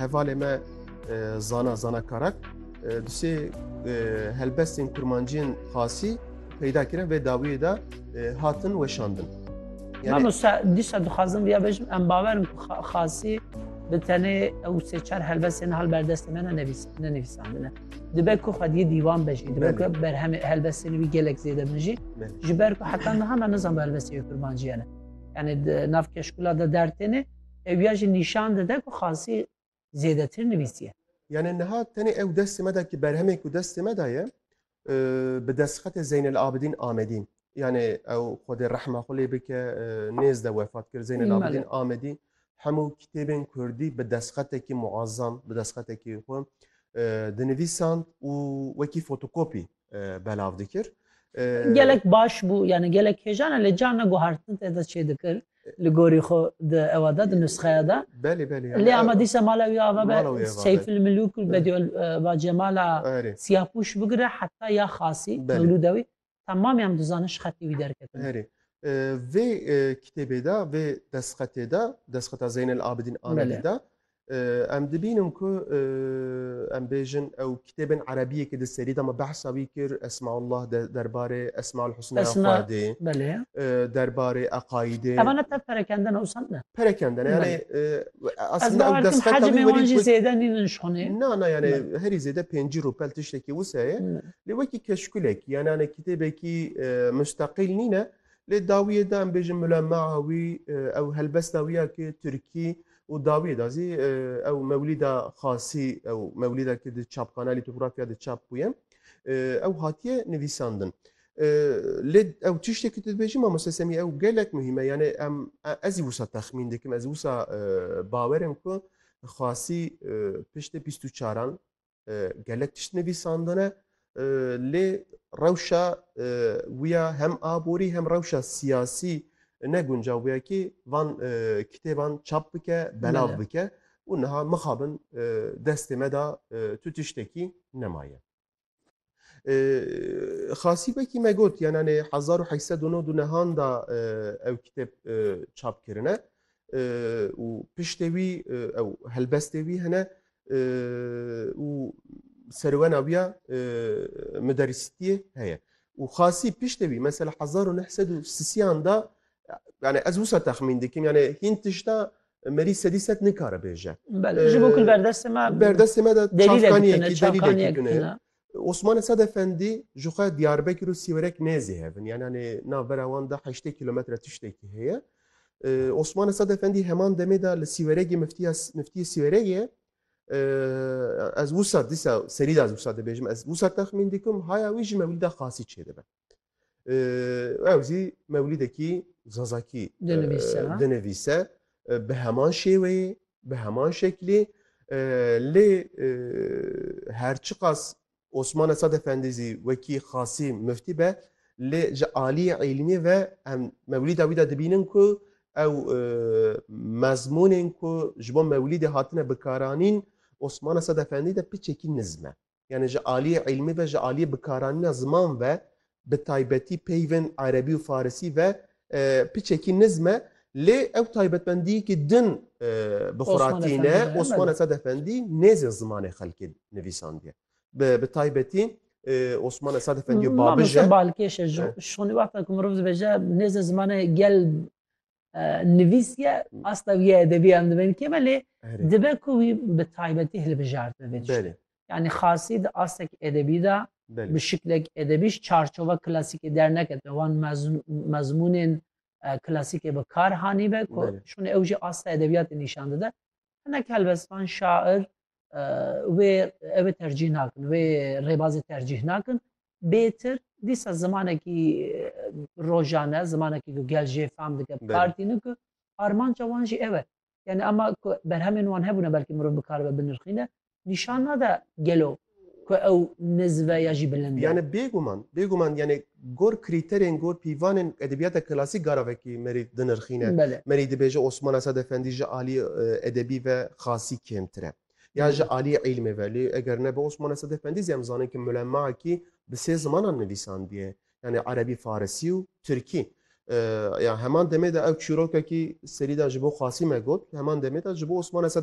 Hevalê me zana zana karak dusê helbestên kurmanciyên xasî peyda kirin vê dawiyê de hatin weşandin. Yani... Mamosta dîsa dixwazim vêya bejim em bawerim ku xasî bi tenê ew sê çar helbestên hal berdestê me ne nevîsandine. Dibe ku xwediyê dîwan be jî dibe ku berhemê helbestên wî gelek zêde bin jî ji ber ku heta niha me nizan bi helbestê kurmanciyane. Yani di nav keşkula de dertêne Ew ya jî nîşan dide ku xasî zêdetir nivîsiye. Yanê niha tenê ew destê me da ki berhemê ku destê me da ye bi destxetê Zeynel Abidîn Amedî yanê ew Xwedê rehma xwe lê bike nêz de wefat kir Zeynel Abidîn Amedî hemû kitêbên Kurdî bi destxetekî muazzam bi destxetekî xwe dinivîsand û wekî fotokopî belav dikir. Gelek baş bû yani gelek hêjana lê carna guhartin te de çê dikir li gorî xwe di ewa de di nusxeya de. Belê belê. Lê ama dîsa mala wî ava be Seyfil Milûk û Bediyo va Cemala siyapûş bigire heta ya xasî mewlûda wî temamî em dizanin ji xetê wî derketin. Herê. Vê kitêbê de vê destxetê de destxeta Zeynel Abidîn Amedî de Em dibînin ku em bêjin ew kitêbên erebiyekê di serî de me behsa wî kir Esmaullah de derbarê Esmaul Husna Esma- Xwedê Belê. derbarê eqaîdê Evan ne tev perekenden o sen de. perekendene yani e, Ez aslında bawer ew kim destpêka hecê wî mêwan werî jî zêde nînin ji xonê. na na yani Belê. herî zêde pêncî rûpel tiştekî wisa ye Belê. lê wekî keşkulek yani hani kitêbekî e, mustaqîl nîne lê dawiyê de em bêjin mulemaa wî e, ew helbesta wî ya ki Tirkî û dawiyê de zî ew mewlîda xasî ew mewlîda ki di çapxana lîtografya de çap bûye ew hatiye nivîsandin. Lê ew tiştê ki tu dibêjî mamoste semî ew gelek muhîme yanê em ez zî wisa texmîn dikim ez wisa bawerim ku xasî piştê bîst û çaran gelek tişt nivîsandine lê rewşa wiya hem aborî hem rewşa siyasî ne guncav bûye kî van kitêban çap bike belav bike û niha mixabin destê me da tu tiştekî nemaye. Xasî wekî me got yan anê hezar û heşt sed û nod û nehan da ew kitêb çap kirine û piştê wî ew helbestê wî hene û serwena wî ya miderîsîtiyê heye û xasî piştê wî mesela hezar û neh sed û sisiyan da yani ez wisa texmîn dikim yani hîn tişta Merî sedî sed nikare bêje. Bel ji bo kul berdestê me berdestê me de çavkaniyekî delîlekî tune ye. Osman Esad Efendî ji xwe Diyarbekir û Sîwerek nêzî hevin yan yanê nav vera wan de heştê kîlometre tiştekî heye. Osman Esad Efendî heman demê de li Sîweregê miftiya miftiyê Sîweregê ez wisa dîsa serî de ez wisa dibêjim ez wisa texmîn dikim haya wî ji mewlîda xasî çêdibe. ew jî mewlîdekî zazakî dinivîse bi heman şêweyê bi heman şeklê lê her çiqas Osman Esad Efendî zî wekî xasî miftî be lê ji aliyê îlmî ve em mewlîda wî de dibînin ku ew mezmûnên ku ji bo mewlîdê hatine bikaranîn Osman Esad Efendî de piçekî nizme. yanî ji aliyê îlmî ve, ji aliyê bikaranîna ziman ve bi taybetî peyvên erebî û farisî ve piçekî nizm e lê ew taybetmendiyekî din bi xwe re tîne. Osman Esed Efendî nêzin zimanê xelkê nivîsandiye. Bi taybetî Osman Esed Efendî babij e. Balkêş e ji xwe wexta ku mirov dibêje nêzin zimanê gel nivîsiye asta vî edebiyan dibe nikê belê dibe ku wî bi taybetî hilbijartin vê tiştê. Yani xasî di astek edebî de bi şiklek edebîş çarçova klasîkê dernekete wan mezmûnên klasîkê bi kar hanîbe ku şûnê ew jî asta edebiyatê nîşan dide. Hinek helbestvan şair wê ew tercîh nakin wê rêbazê tercîh nakin bêtir dîsa zimanekî rojane zimanekî ku gel jê fam dike partîne ku armanca wan jî ev e yani ema ku berhemên wan hebûne belkî mirov bikaribe binirxîne nîşan nade gelo ku ew nizve ya jî bilind e yani bêguman bêguman yani gor krîterên gor pîvanên edebiyata klasîk gara vekî merî dinirxîne merî dibêje Osman Esad Efendî ji alî edebî ve xasî kêmtir e. Ya ji aliyê îlmê ve. Lê eger nebe Osmane Sedefendî zî em zanin ku Mulemmakî bi sê zimanan nivîsandiye. Yanî Erebî, Farisî û Tirkî. Ya heman demê de ew çîrokekî serî de ji bo Qasîme got, heman demê de ji bo Osmane Sedefendî.